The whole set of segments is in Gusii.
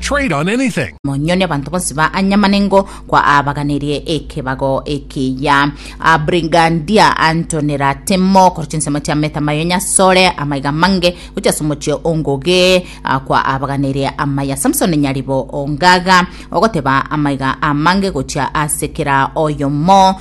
Trade on anything. Monyone abanto bonsi ba Anyamanengo kwa abaganerie ekebago ekiya. A Brigandia antonera temo kore chinsemo chia meta mayo nyasore amaiga mange gochia somochio ongoge a kwa abaganerie amaya Samson nyaribo ongaga ogoteba amaiga amange gochia ase kera oyomo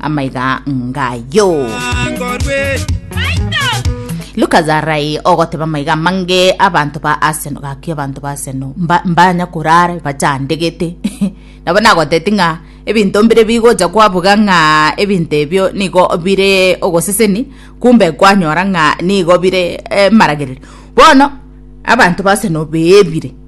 amaiga ngayo. Lucas arai ogoteba amaiga amange abanto ba Arsenal gaki abanto ba Arsenal mba- mbanya korara bachandegete nabo nagoteti ng'a ebinto mbire bigocha kwabuga ng'a ebinto ebio nigo bire ogoseseni kumbe kwanyora ng'a nigo bire eh, maragererio bono abanto ba Arsenal beebire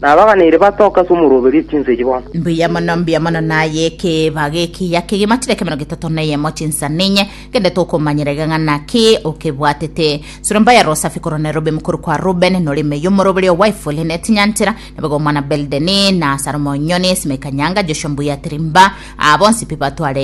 Na abaganeire batoke ase omoroberio chinsa echi bono. Mbuya mono, mbuya mono naye ekeeba gekiya kegima chire ekemerogo getato na eyemo chinsa ninye, gende tokomanyera egang'ana ki okebwatete. Surumbaya Rosafi korwa Nairobi mokori kwa Reuben, nore ime y'omoroberi o Wyful ne Tinyantira, na bego omwana Beldeni, na Sarumo Onyoni, Simei Kanyanga, Joshua Mbuya Tirimba, aa bonsi pi batware